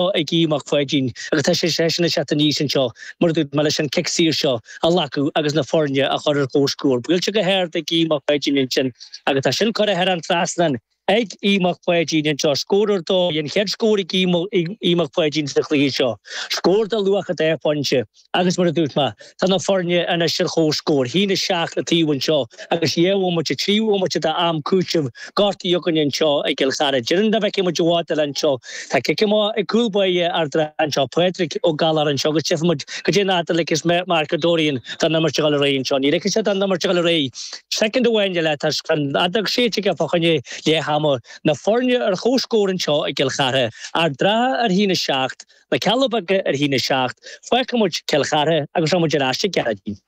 seo ag Aodh Mac Pháidín agus tá seisean ag teacht aníos anseo, mar a dúirt mé, leis an cic saor seo a ghlacadh agus na foirne a chur ar comhscór. Buailte go hard ag Aodh Mac Pháidín ansin agus tá sin curtha thar an trasnán ag Aodh Mac Pháidín anseo. Scór ar dóigh, an chéad scór ag Aodh Mac Pháidín sa chluiche seo. Scór de luach dhá phointe. Agus mar a dúirt mé, tá na foirne anois ar chomhscór. 1 7 an taobh anseo agus dhá bhomaite, trí bhomaite d'am cúitimh gortaithe againne anseo i gCill Chartha. Déarfainn dá bhfeicfeadh muid a mhátail anseo. Tá cic amach ag cúl báire Ard an Rátha anseo, Pádraig Ó Gallachair anseo agus tchífidh muid caidé an fhad a ligfeas Mark Dorian don imirt a ghabháil ar aghaidh anseo. Ní ligfidh sé don imirt a ghabháil ar aghaidh soicind amháin eile toisc an fheadóg séidte aige fá choinne leath ama. Na foirne ar chomhscór anseo i gCill Chartha. Ard an Rátha ar 1 7. na Cealla Beaga ar 1 7, fágfaidh muid Cill Chartha agus rachaidh muid ar ais go dtí Gearóidín.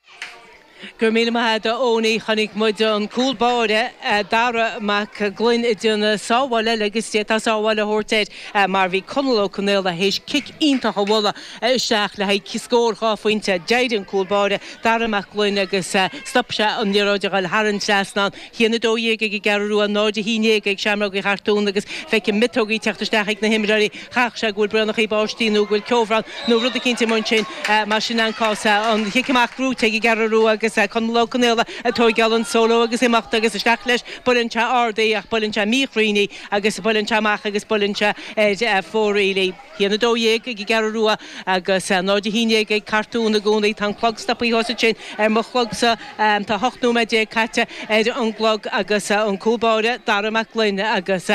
Go raibh míle maith agat a Eoiní, chonaic muid an cúl báire Dara Mac Gloinn ag déanamh sábháil eile agus d'fhéadfá sábháil a thabhairt air mar bhí Conall Ó Conaola théis cic iontach a bhualadh isteach le haghaidh scór dhá phointe. D'éirigh an cúl báire Dara Mac Gloinn agus stop sé an liathróid a ghoil thar an trasnán. 1 12 ag an gCeathrú Rua, 0 11 ag Seamrógaí Chartúin agus feicim miotógaí ag teacht isteach ag na himreoirí. Chaithfeadh sé go bhfuil braonachaí báistí nó go bhfuil ceobhrán nó rud eicínt amuigh ansin mar sin an cás. An chic amach gnóite ag an gCeathrú Rua agus Conall Ó Conaola ag tóigeáil an solo agus imeacht agus isteach leis. Buaileann sé ard í ach buaileann sé míchruinn í agus buaileann sé amach agus buaileann sé ar fóraoil í. 1 12 ag an gCeathrú Rua agus 0 11 ag Cartún i gcónaí. Tá an clog stopaithe fós ansin ar mo chlogsa. Tá 18 nóiméad caite ar an gclog agus an cúl báire, Dara Mac Gloinn agus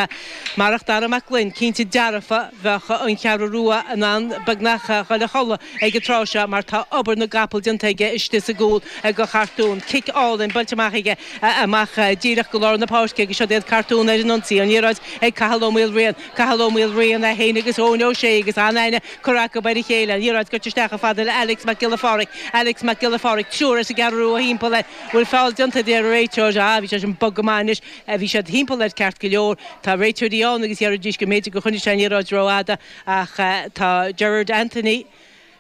marach Dara Mac Gloinn, cinnte dearfa bheadh an Cheathrú Rua in ann beagnach dul a chodladh ag an tráth seo mar tá obair na gcapall déanta aige istigh sa gcúl ag Cartún. Cic álainn buailte amach aige amach díreach go lár na páirce agus siod iad Cartún ar an ionsaí. An liathróid ag Cathal Ó Maoilriain. Cathal Ó Maoilriain, é féin agus Eoin Ó Sé, agus an-aithne curtha acu ar a chéile, an liathróid goite isteach chomh fada le Alex Mac Giolla Phádraig, Alex Mac Giolla Phádraig, triúr as an gCeathrú Rua thimpeall air, bhfuil feall déanta a deir an réiteoir, ah bhí sé sin bog go maith anois, bhí siad thimpeall air ceart go leor, tá réiteoirí ann agus déarfaidís go mb'fhéidir gur choinnigh sé an liathróid rófhada ach tá Gerard Anthony,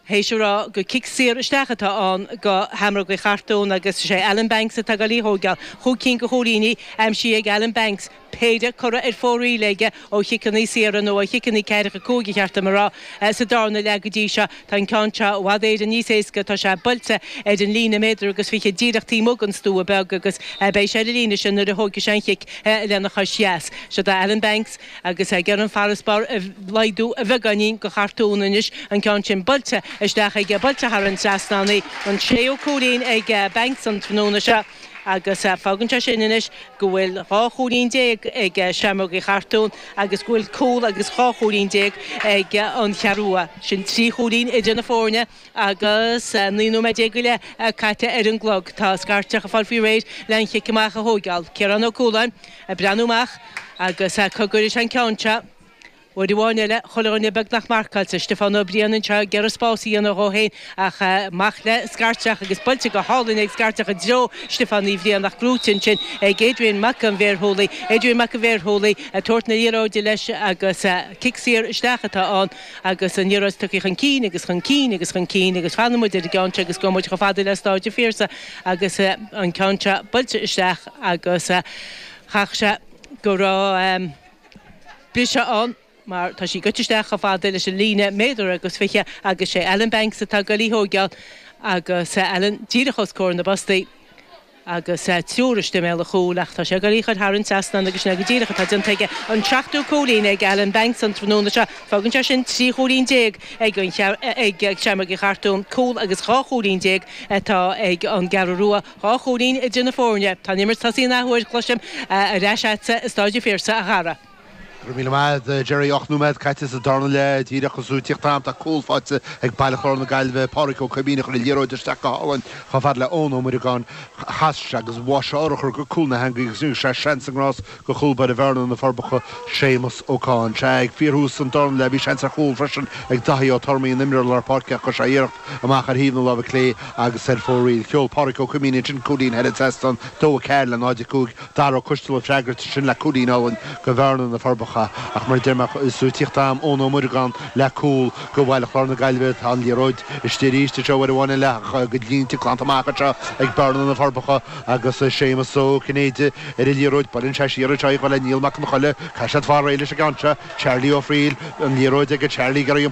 théis a rá gur cic saor isteach atá ann do Sheamrógaí Chartún agus is é Alan Banks atá ag goil á thóigeáil chúig cinn de chúilíní, aimsithe ag Alan Banks, péire curtha ar fóraoil aige ó chiceanna saora, nó ó chiceanna ceathracha cúig ba cheart dom a rá, sa darna leath go dtí seo. Tá an ceann seo i bhfad Éireann níos éasca, tá sé buailte ar an líne méadar agus fiche díreach taobh amuigh den stua beag agus beidh sé ar an líne sin nuair a thógfaidh sé an chic lena chois dheas. Siod é Alan Banks. agus é ag iarraidh an farasbarr a laghdú a bheagáinín go Chartún anois, an ceann sin buailte isteach aige, buailte thar an trasnán í, an séú cúilín ag Banks an tráthnóna seo agus fágann sé sin anois go bhfuil dhá chúilín déag ag Seamrógaí Chartúin agus go bhfuil cúl agus dhá chúilín déag ag an Cheathrú Rua. Sin trí chúilín idir na foirne agus naoi nóiméad déag go leith caite ar an gclog. Tá scairteach ag fáil faoi réir le an chic amach a thóigeáil. Ciarán Ó Cualáin. a' breathnú amach agus cá gcuirfidh sé an ceann seo, uair amháin eile, chuile dhuine beagnach marcáilte, Stiofán Ó Briain anseo ag iarraidh spás a dhéanamh dhó féin ach amach le scairteach agus buailte go hálainn ag scairteach i dtreo Stiofán Uí Bhriain ach gnóite ansin ag Adrian Mac An Bhéarshúiligh, Adrian Mac An Bhéarshúiligh ag tabhairt na liathróide leis agus cic saor isteach atá ann. agus an liathróid tugtha chun cinn agus chun cinn agus chun cinn agus fanfaidh muid ar an gceann seo agus gabhfaidh muid chomh fada le Stáid an Phiarsaigh agus an ceann seo buailte isteach agus chaithfeadh sé go raibh briseadh ann mar tá sí goite isteach chomh fada leis an líne, méadar agus fiche agus sé Alan Banks atá ag goil í thóigeáil agus Alan díreach os comhair na bpostaí. agus triúr istigh i mbéal an chúil, ach tá sé ag iarraidh í a chur thar an trasnán agus sin é go díreach atá déanta aige. An seachtú cúilín ag Alan Banks an tráthnóna seo. Fágann sé sin trí chúilín déag ag Seamrógaí Chartúin, cúl, agus dhá chúilín déag atá ag an gCeathrú Rua, dhá chúilín idir na foirne. Tá an imirt tosaithe in athuair, cloisim, ar ais agatsa i Stáid an Phiarsaigh, a chara. Go raibh míle maith a'd, Gerry. Ocht nóiméad caite sa darna leath díreach agus tú ag tíocht a'm tá cúl faighte ag Baile Chláir na Gaillimhe. Pádraig Ó Coimín a chuir an liathróid isteach go hálainn chomh fada le Eoin Ó Muireagáin. Chas sé agus bháigh sé urchar go cúl na heangaí agus rinne sé seans na ngrás go chúl báire Bhearna, Na Forbacha, Séamus Ó Cáin. Sea, ag fíorthús an darna leath bhí seans ar chúl freisin ag Daithí Ó Tormaí, an t-imreoir lár páirce ach chuir sé iarracht amach ar thaobh na láimhe clé agus ar fóraoil. Sheol Pádraig Ó Coimín ansin cúilín thar an trasnán, 2-4 le 0-5. Dara Ó Coistealbha ag freagairt sin le cúilín álainn go Bhearna, Na Forbacha, ach mar a deirim díreach is tú ag tíocht a'm Eoin Ó Muireagáin le cúl go Baile Chláir na Gaillimhe tá an liathróid istigh arís, anseo uair amháin eile ach go bhfuil sí glanta amach anseo ag Bearna, Na Forbacha, agus Séamus Ó Cinnéide ar an liathróid, buaileann sé siar anseo í chomh fada le Niall Mac an Choille, caithfidh siad fáil réidh leis an gceann seo, Charlie Ó Fríl, an liathróid ag Charlie, giorraíonn.